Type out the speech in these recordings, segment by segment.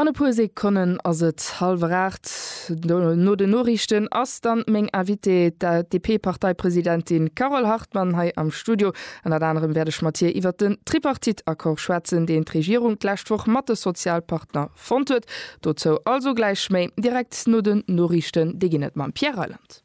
An e puer Sekonnen ass et hallwer aacht. No den Noriichten ass dann meng Invitée, d'ADP-Parteipresidentin Carole Hartmann, hei am Studio. Ënnert anerem wäert ech mat hir iwwert den Tripartite-Accord schwätzen, deen d'Regierung d'lescht Woch mat de Sozialpartner fonnt huet. Dozou also gläich méi direkt no den Noriichten. Déi ginn et mam Pierre Reyland.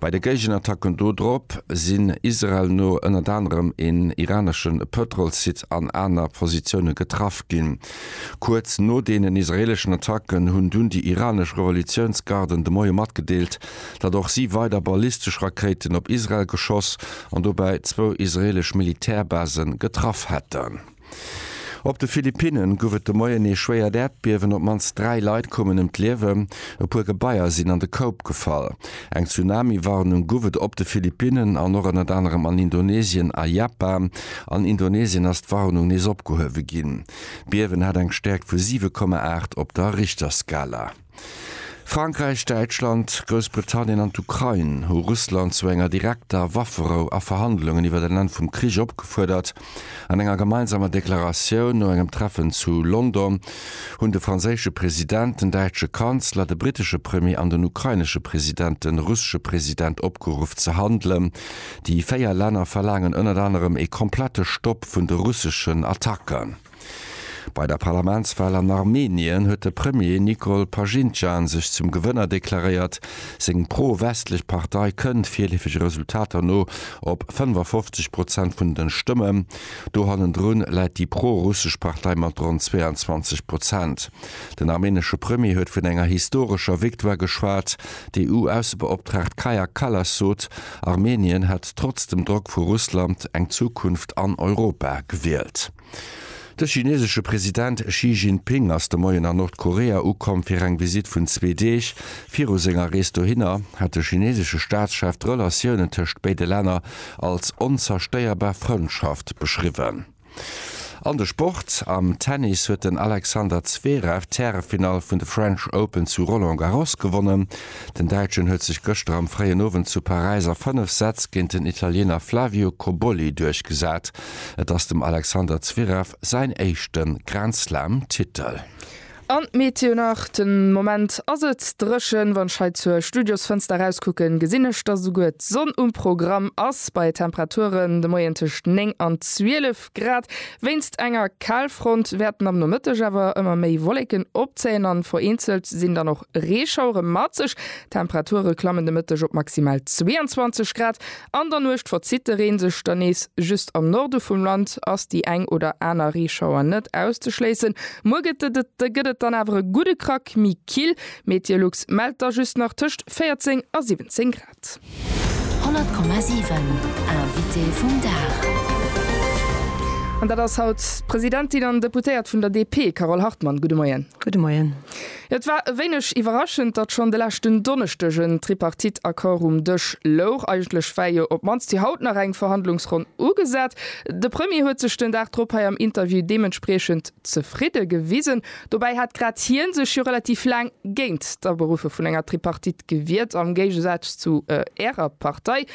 Bei de Géigenattacken do drop sinn Israel no ënnert anerem een iranesche Pëtrolssite an aner Positioune getraff ginn. Kuerz no deenen israeeleschen Attacken hunn dunn déi iranesch Revolutiounsgarden de Moie matgedeelt, datt och si weider ballistesch Rakéiten op Israel geschoss an dobäi zwou israeelesch Militärbasen getraff hätten. Op de Philippinne gouf et de Moien ee schwéiert Äerdbiewen, op d'mannst dräi Leit koumen ëm d'Liewen, e puer Gebaier sinn an de Koup gefall. Eng Tsunami-Warnung gouf et op de Philippinnen an och ënnert anerem an Indonesien a Japan. An Indonesien ass d'Warnung nees opgehuewe ginn. D'Biewen hat eng Stäerkt vu 7,8 op der Richterskala. Frankräich, Däitschland, Groussbritannien an d'Ukrain hu Russland zu enger direkter Wafferou a Verhandlungen iwwer en Enn vum Krich opgefuerdert. An enger gemeinsamer Deklaratioun no engem Treffen zu London hunn de franséische President, den däitsche Kanzler, de brittesche Premier an den ukrainesche President de russesche President opgeruff ze handelen. Déi véier Länner verlaangen ënnert anerem ee komplette Stopp vun de russeschen Attacken. Bei der Parlamentswal an Armenien huet de Premier Nikol Pashinjan sech zum Gewënner deklaréiert. Seng pro-westlech Partei kënnt, virleefege Resultater no, op 55 Prozent vun de Stëmmen. Do hannendrun läit déi pro-russesch Partei mat ronn 22 Prozent. Den armenesche Premier huet vun enger historescher Victoire geschwat. D'EU-Aussebeoptraagt Kaja Kallas sot, Armenien hätt trotz dem Drock vu Russland eng Zukunft an Europa gewielt. De chinesesche President Xi Jinping ass de Moien a Nordkorea ukomm fir eng Visitt vun zwee Deeg. Viru senger Rees dohinner hat de chinesesche Staatschef d'Relatiounen tëscht béide Länner als onzerstéierbar Frëndschaft beschriwwen. An de Sport, Am Tennis huet den Alexander Zverev d'Härefinall vun de French Open zu Roland Garros gewonnen. Den Däitschen huet sech gëschter am fréien Owend zu Paräis a 5 Sätz géint den Italiener Flavio Cobolli duerchgesat. Et ass dem Alexander Zverev säin éischte Grand Slam-Titel. An d'Meteo nach, Den Moment ass et dréchen, wann ech hei zur Studiosfënster erauskucken, gesinn ech, dass esouguer d'Sonn um Programm ass, bei Temperaturen de Moien tëscht 9 an 12 Grad. Wéinst enger Kalfront wäerten am Nomëtteg awer ëmmer méi Wolleken opzéien an vereenzelt sinn dann och Reeschauere mat sech. D'Temperature klammen de Mëtteg op maximal 22 Grad. An der Nuecht verzitt de Reen sech dann nees. Just am Norde vum Land ass déi eng oder aner Reeschauer net auszeschléissen. Muer gëtt gëtt et dann awer e gudde Krack méi kill. Meteolux mellt da just nach tëscht 14 a 17 Grad. 100,7 Invité vum Dag. An dat ass haut d'Presidentin an Deputéiert vun der DP, Carole Hartmann. Gudde Moien. Gudde Moien. Et war e wéineg iwwerraschend, datt schonn de leschten Donneschdeg en Tripartite-Accord um Dësch louch. Eigentlech war jo op d'mannst fir haut nach eng Verhandlungsronn ugesat. De Premier huet sech den Dag drop hei am Interview deementspriechend zefridde gewisen. Dobäi hat grad hie sech jo relativ laang géint d'Aberuffe vun enger Tripartite gewiert, am Géigesaz zu Ärer Partei.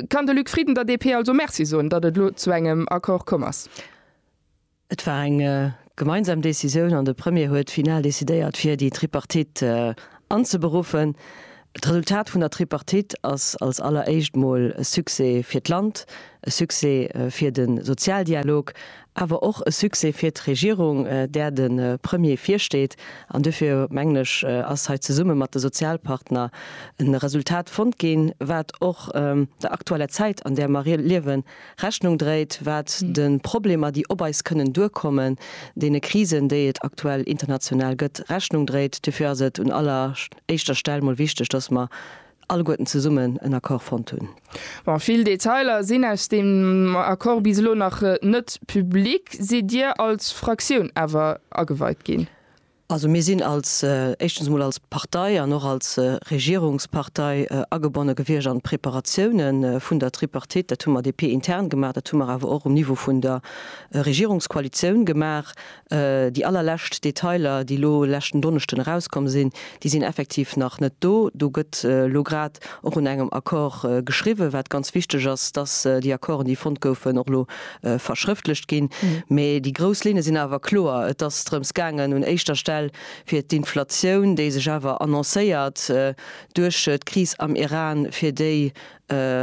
Kann de Luc Frieden der DP also Merci soen, datt et elo zu engem Accord komm ass? Et war eng gemeinsam Decisioun an de Premier huet final decidéiert fir déi Tripartite anzeberuffen. D'Resultat vun der Tripartite ass als alleréischt mol e Succès fir d'Land, e Succès fir de Sozialdialog, awer och e Succès fir d'Regierung, där de Premier virsteet. An duerfir, mengen ech, ass hei zesumme mat de Sozialpartner e Resultat fonnt ginn, wat och der aktueller Zäit, an där mer liewen, Rechnung dréit, wat de Problemer, déi op eis kënnen duerkommen, deene Krisen, déi et aktuell international gëtt, Rechnung dréit. Dofir ass et un aller éischter Stell mol wichteg, dass mer alleguerten zesummen en Accord fonnt hunn. Bon, vill Detailer sinn aus deem Accord bis elo nach net public. Sidd Dir als Fraktioun awer ageweit ginn? Also mir sinn als, éischtens emol als Partei an och als Regierungspartei agebonne gewiescht an d'Preparatioune vun der Tripartite. Dat hu mer DP-intern gemaach, dat hu mer awer och um Niveau vun der Regierungskoalitioun gemaach. Déi allerlescht Detailer, déi elo leschten Donneschden erauskomm sinn, déi sinn effektiv nach net do. Do gëtt elo grad och un engem Accord geschriwwen, wat ganz wichteg ass, dass déi Accorden, déi fonnt goufen, och elo verschrëftlecht ginn, mee déi grouss Linne sinn awer kloer. Et ass drëms gaangen un éischter Stell fir d'Inflatioun, déi sech awer annoncéiert, duerch d'Kris am Iran, fir déi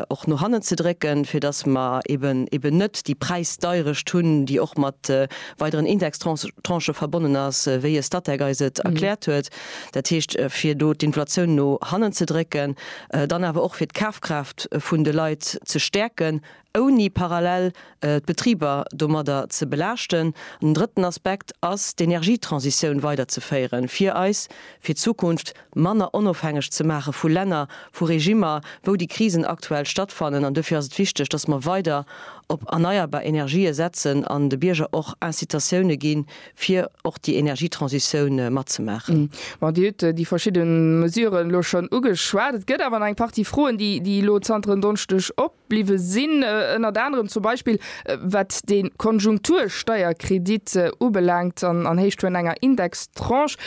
och no hannen ze drécken, fir datt mer eben net déi Präisdeirecht hunn, déi och mat weideren Indextranchë verbonnen ass, wéi e Statec eis et erkläert huet. Dat heescht, fir do d'Inflatioun no hannen ze drécken, dann awer och fir d'Kafkraaft vun de Leit ze stäerken. ouni parallel d'Betriber domadder ze belaaschten. An den drëtten Aspekt ass, d'Energietransitioun weiderzeféieren, fir eis fir d'Zukunft manner onofhängeg ze maache vu Länner, vu Regimmer, wou déi Krisen aktuell stattfannen. An dofir ass et wichteg, dass mer weider op erneierbar Energië setzen an de Bierger och Incitatioune ginn, fir och déi Energietransitioun matzemaachen. Mä Dir hutt déi verschidde Mesuren elo schonn ugeschwat. Et gëtt awer nach eng Partie Froen, déi elo zanter en Donneschdeg op. bliwwe sinn, ënnert anerem zum Beispill wat de Konjunktursteierkredit ubelaangt an an Héicht vun enger Indextranche.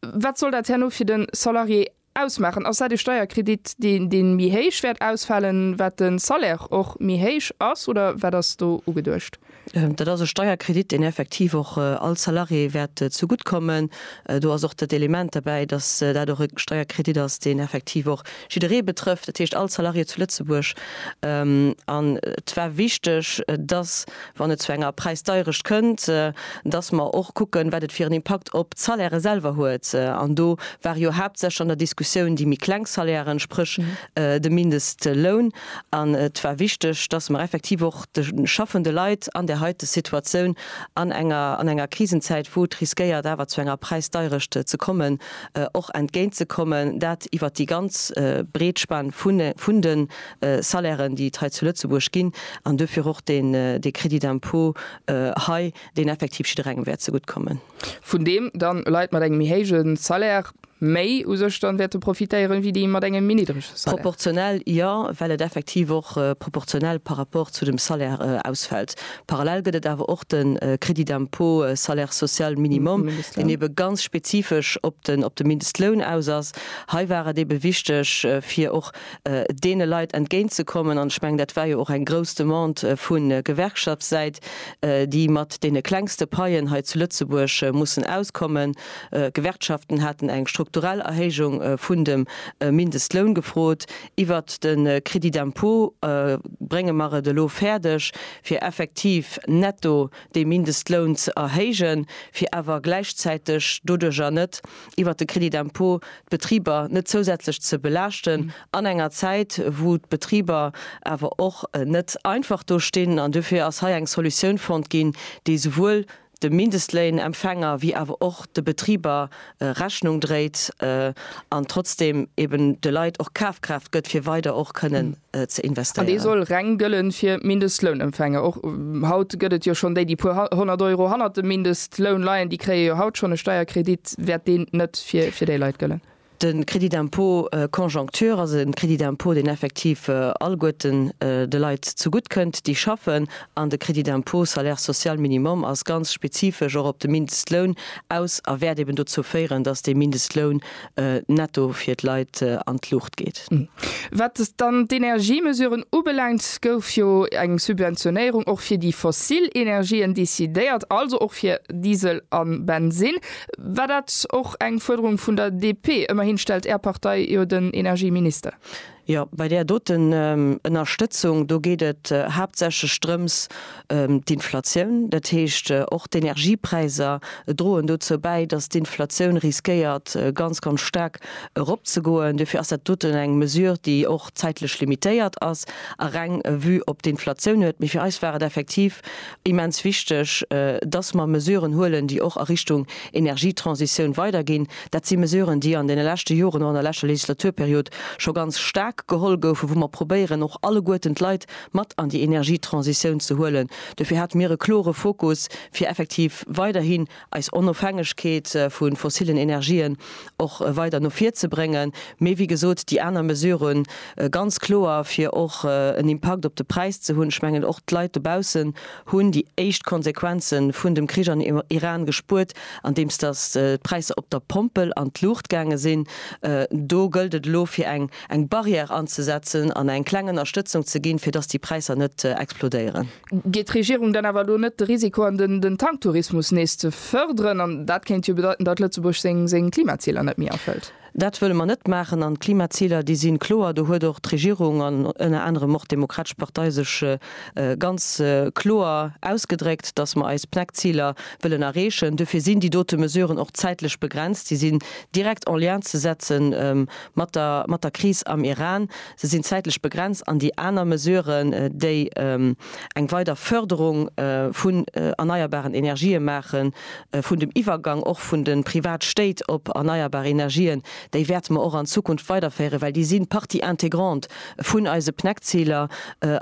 Wat soll dat herno fir de Salarié ausmaachen? Ass dat e Steierkredit, deen deen méi héich wäert ausfalen, wat de Salaire och méi héich ass, oder wat ass do ugeduecht? Dat ass e Steierkredit, deen effektiv och all Salarié wäert zegutt kommen. Do ass och dat Element derbäi, datt dat och e Steierkredit ass, deen effektiv och jidderee betrëfft, dat heescht all Salarié zu Lëtzebuerg. An et war wichteg, datt, wann et zu enger Präisdeierecht kënnt, datt mer och kucken, wat et fir en Impakt op d'Salairë selwer huet. An do ware jo haaptsächlech an der Diskussioun déi méi kleng Salairen, spréch de Mindestloun. An et war wichteg, dass mer effektiv och de schaffende Leit an där heite Situatioun, an enger, an enger Krisenzäit, wou et riskéiert awer zu enger Präisdeierecht ze kommen, och entgéintzekommen, dat iwwert déi ganz breet Span vun de Salairen, déi et hei zu Lëtzebuerg ginn, an duerfir och dee Crédit d'impôt hei, deen effektiv jidderengem wäert zegutt kommen. Vun deem dann Leit mat engem méi héije Salaire, Méi u sech dann wäerte profitéieren, wéi déi mat engem méi niddrege Salaire? Proportionell jo, well et effektiv och proportionell par rapport zu dem Salaire ausfält. Parallel gëtt et awer och de Crédit d'impôt salaire social minimum, deen ebe ganz spezifesch op de Mindestloun aus ass. Hei war et ebe wichteg, fir och deene Leit entgéintzekommen, an ech mengen, dat war jo och eng grouss Demande vu Gewerkschaftssäit, déi mat deene klengste Paien hei zu Lëtzebuerg mussen auskommen. Gewerkschaften haten eng strukturell Erhéijung vun dem Mindestloun gefrot. Iwwert de Crédit d'impôt brénge mer et elo fäerdeg, fir effektiv netto dee Mindestloun ze erhéijen, fir awer gläichzäiteg doduerjer net, iwwert de Crédit d'impôt, d'Betriber net zousätzlech ze belaaschten an enger Zäit, wou d'Betriber awer och net einfach do stinn. An dofir ass hei eng Solutioun fonnt ginn, déi souwuel de Mindestléinempfänger wéi awer och de Betriber Rechnung dréit an trotzdeem eben de Leit och Kafkraaft gëtt fir weider och kënnen ze investéieren. An dee soll reng gëllen fir Mindestlounempfänger. Och haut gëtt et jo schonn déi, déi puer honnert Euro hannert dem Mindestloun leien, déi kréie jo haut schonn e Steierkredit. Wäert deen net fir déi Leit gëllen? De Crédit d'impôt conjoncture ass e Crédit d'impôt, deen effektiv alleguerten de Leit zegutt kënnt, déi schaffen. An de Crédit d'impôt salaire social minimum ass ganz spezifesch och op de Mindestloun aus a wäert eben dozou féieren, dass de Mindestloun netto fir d'Leit an d'Luucht geet. Wat dann d'Energiemesuren ubelaangt, gouf jo eng Subventionéierung och fir déi fossil Energien decidéiert, also och fir Diesel a Bensinn. War dat och eng Fuerderung vun der DP? Ëmmerhin stellt Är Partei jo den Energieminister. Jo, bei där doten Ënnerstëtzung, do geet et haaptsächlech drëms, d'Inflatioun, dat heescht och d'Energiepräisser droen dozou bäi, datt d'Inflatioun riskéiert ganz, ganz staark eropzegoen. Dofir ass dat doten eng Mesure, déi och zäitlech limitéiert ass a reng Vue op d'Inflatioun huet. Mee fir eis war et effektiv immens wichteg, dass mer Mesuren huelen, déi och a Richtung Energietransitioun weiderginn. Dat si Mesuren, déi an deene leschte Joren, och an der leschter Legislaturperiod scho ganz staark geholl goufen, wou mer probéieren, och alleguerten d'Leit mat an déi Energietransitioun ze huelen. Dofir hate mir e klore Fokus, fir effektiv weiderhin, eis Onofhängegkeet vu fossillen Energien och weider no vir ze bréngen, mee wéi gesot, déi aner Mesurë ganz kloer, fir och en Impakt op de Präis ze hunn. Ech mengen, och d'Leit dobaussen hunn déi éischt Konsequenze vun dem Krich am Iran gespuert, andeems datt d'Präisser op der Pompel an d'Luucht gaange sinn. Do gëllt et elo, fir eng Barrière anzesetzen an eng kleng Ënnerstëtzung ze ginn, fir datt déi Präisser net explodéieren. Geet d'Regierung dann awer elo net de Risiko an, den Tanktourismus nees ze fërderen? An dat kéint jo bedeiten, datt Lëtzebuerg seng Klimaziler net méi erfëllt. Dat wëlle mer net maachen. An d'Klimaziler, déi si kloer. Do huet och d'Regierung an ënner anerem och d'Demokratesch Partei sech ganz kloer ausgedréckt, datt mer eis PNEC-Ziler wëllen erreechen. Duerfir sinn déi dote Mesuren och zäitlech begrenzt. Déi sinn direkt en lien ze setze mat der Kris am Iran. se sinn zäitlech begrenzt, an déi aner Mesuren, déi eng weider Förderung vun erneierbaren Energië maachen, vun dem Iwwergang och vun de Privatstéit op erneierbar Energien, déi wäerte mer och an Zukunft weiderféieren, well déi si Partie intégrante vun eise PNEC-Ziler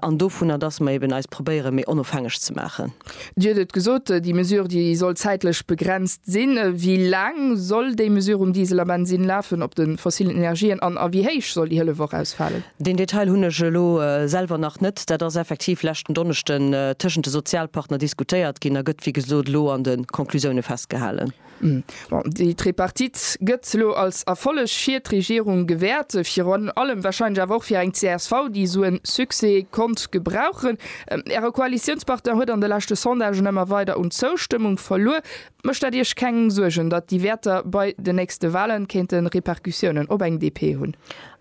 an dovunner, dass mer eeben eis probéiere méi onofhängeg ze maachen. Dir hutt et gesot, déi Mesure, déi soll zäitlech begrenzt sinn. Wéi laang soll déi Mesure um Diesel a Bensinn lafen, op de fossillen Energien an a wéi héich soll déi Hëllef och ausfalen? Deen Detail hunn ech elo selwer nach net. Dat ass effektiv leschten Donneschden tëschent de Sozialpartner diskutéiert ginn a gëtt wéi gesot elo an de Conclusioune festgehalen. Bon, déi Tripartite gëtt elo als Erfolleg fir d'Regierung gewäert, virun allem wahrscheinlech awer och fir eng csv, déi esou en Succès konnt gebrauchen. Äre Koalitiounspartner huet an de leschte Sondagen ëmmer weider un Zoustëmmung verluer. Mécht dat Iech keng Suergen, datt déi Wäerter bei den nächste Wahlen kéinte Repercussiounen op eng DP hunn?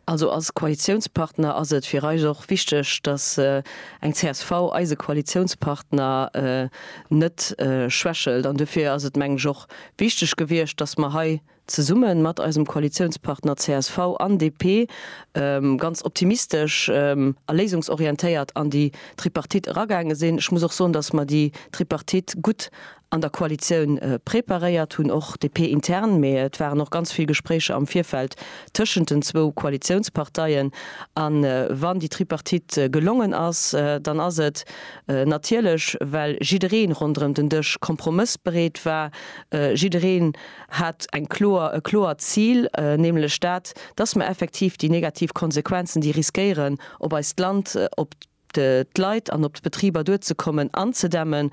Also als Koalitiounspartner ass et fir eis och wichteg, datt eng csv eise Koalitiounspartner net schwächelt. An dofir ass et, mengen ech, och wichteg gewiescht, datt mer hei zesumme mat eisem Koalitiounspartner csv an DP ganz optimistesch a léisungsorientéiert an déi Tripartite eragaange sinn. Ech muss och soen, datt mer déi Tripartite gutt an der Koalitioun preparéiert hunn, och DP-intern, mee et waren och ganz vill Gespréicher am Virfeld tëschent den zwou Koalitiounsparteien. A wann déi Tripartite gelongen ass, dann ass et natierlech, well jidderee ronderëm den Dësch kompromëssbereet war. Jidderee hat eng kloer, e kloert Zil, nämlech dat, dass mer effektiv déi negativ Konsequenzen, déi riskéieren op eist Land, op d'Leit an op d'Betriber duerzekommen, anzedämmen.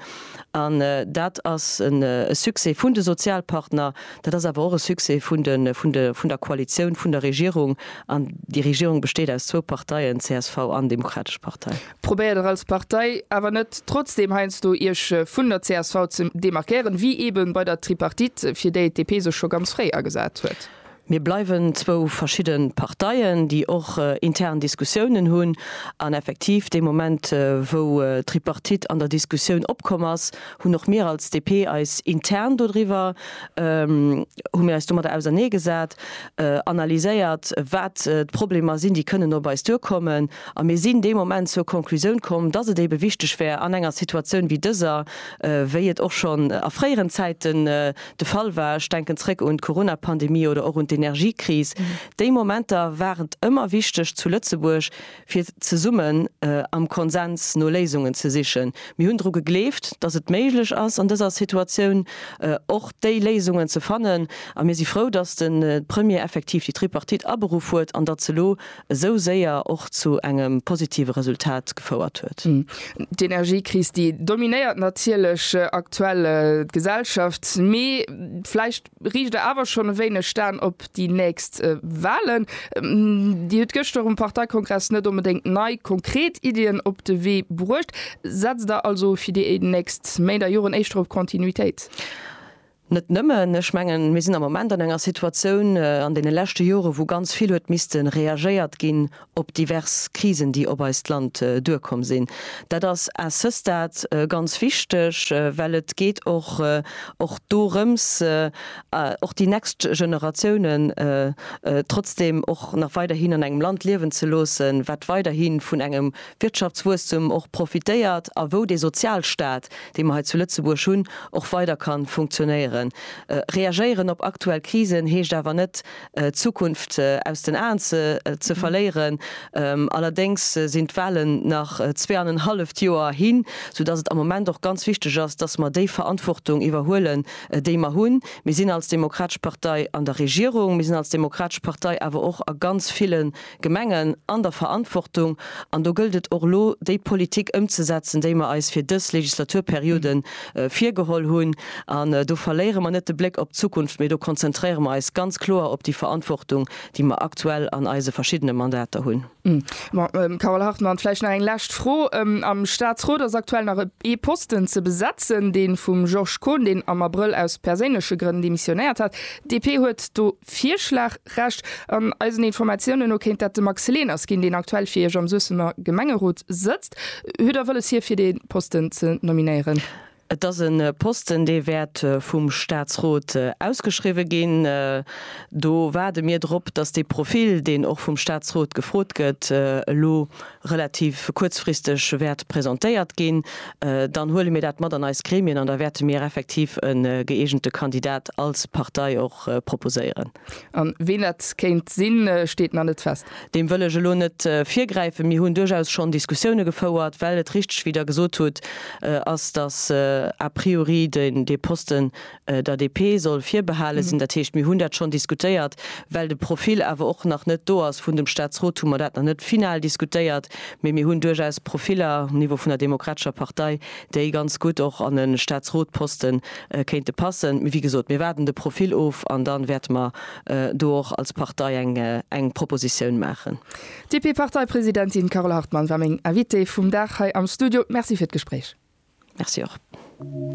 An dat ass e Succès vun de Sozialpartner, dat ass awer och e Succès vun der Koalitioun, vun der Regierung. An déi Regierung besteet aus zwou Parteien, csv an Demokratesch Partei. Probéiert der als Partei awer net trotzdeem heiansdo Iech vun der csv ze demarkéieren, wéi eeben bei der Tripartite, fir déi d'DP sech scho ganz fréi agesat huet? Mir bleiwen zwou verschidde Parteien, déi och intern Diskussiounen hunn. An effektiv, dee Moment, wou d'Tripartite an der Diskussioun opkomm ass, hunn och mir als DP eis intern dodriwwer, hu mir eis domadder ausernee gesat, analyséiert, wat d'Problemer sinn, déi kënnen op eis duerkommen. A mir sinn dee Moment zur Konklusioun komm, dass et ebe wichteg wär an enger Situatioun wéi dëser, wéi et och schonn a fréieren Zäiten, de Fall war, ech denken zréck un d'Corona-Pandemie oder och un d'Energiekris, déi Momenter war et ëmmer wichteg zu Lëtzebuerg, fir zesummen am Konsens no Léisungen ze sichen. Mir hunn dru gegleeft, datt et méiglech ass, an dëser Situatioun och déi Léisungen ze fannen. A mir si frou, datt de Premier effektiv déi Tripartite aberuff huet an datt se elo esou séier och zu engem positive Resultat gefouert huet. D'Energiekris, déi dominéiert natierlech aktuell d'Gesellschaft, mee vläicht riicht Der awer schonn e wéineg d'Aen op déi nächst Walen. Dir hutt gëschter um Parteikongress net onbedéngt nei konkret Iddien op de Wee bruecht. Setzt Der also fir déi nächst Méint a Joren éischter op Kontinuitéit? Net nëmmen. Ech mengen, mir sinn am Moment an enger Situatioun, an deene leschte Jore wou ganz vill huet misste reagéiert ginn op divers Krisen, déi op eist Land duerkomm sinn. Dat ass à ce stade ganz wichteg, well et geet och och dorëms, och déi next Generatiounen trotzdeem och nach weiderhin an engem Land liewen ze loossen, wat weiderhi vun engem Wirtschaftswuesstum och profitéiert a wou dee Sozialstat, dee mer hei zu Lëtzebuerg hunn, och weider ka funktionéieren. Reagéieren op aktuell Krisen heescht awer net, d'Zukunft aus den Aen ze verléieren. Allerdéngs sinn d'Wahlen nach zweeanenhalleft Joer hin, soudass et am Moment och ganz wichteg ass, dass mer déi Verantwortung iwwerhuelen, déi mer hunn. Mir sinn als Demokratesch Partei an der Regierung, mir sinn als Demokratesch Partei awer och a ganz ville Gemengen an der Verantwortung, an do gëllt et och elo, déi Politik ëmzesetzen, déi mer eis fir dës Legislaturperiode virgeholl hunn. An do verléiere mer net de Bléck op d'Zukunft, mee do konzentréiere mer eis ganz kloer op déi Verantwortung, déi mer aktuell an eise verschiddene Mandater hunn. Mme Carole Hartmann, Vläicht nach eng lescht Fro. Am Statsrot ass aktuell nach ee Posten ze besetzen, dee vum Georges Kohn, deen am Abrëll aus perséinleche Grënn demissionéiert hat. D'DP huet do Virschlag Recht. An eisen Informatiounen no kéint dat de Max Leners ginn, deen aktuell fir Iech am Suessemer Gemengerot sëtzt. Huet Der wëlles, hie fir dee Posten ze nominéieren? Et ass e Posten, dee wäert vum Staatsrot ausgeschriwwe ginn. Do waarde mir drop, datt dee Profil, deen och vum Staatsrot gefrot gëtt, elo relativ kuerzfristeg wäert presentéiert ginn, dann huele mir dat mat an eis Gremien an da wäerte mir effektiv e gëeegente Kandidat als Partei och proposéieren. A ween dat kéint sinn, steet nach net fest? Deem wëll ech elo net virgräifen. Mir hunn duerchaus schonn Diskussioune gefouert, well et richteg, wéi Der gesot hutt, ass, dass a priori dee Posten der DP soll virbehale sinn. Dat heescht, mir hunn dat schonn diskutéiert. Well de Profil awer och nach net do ass vun dem Statsrot, hu mer dat nach net final diskutéiert. Mee mir hunn duerchaus Profiller um Niveau vun der Demokratescher Partei, déi ganz gutt och an e Statsrotposten kéinte passen. Mee wéi gesot, mir waarden de Profil of an da wäerte mer do och als Partei eng Propositioun maachen. D'DP-Parteipresidentin Carole Hartmann war meng Invitée vum Dag hei am Studio. Merci fir d'Gespréich. Merci och.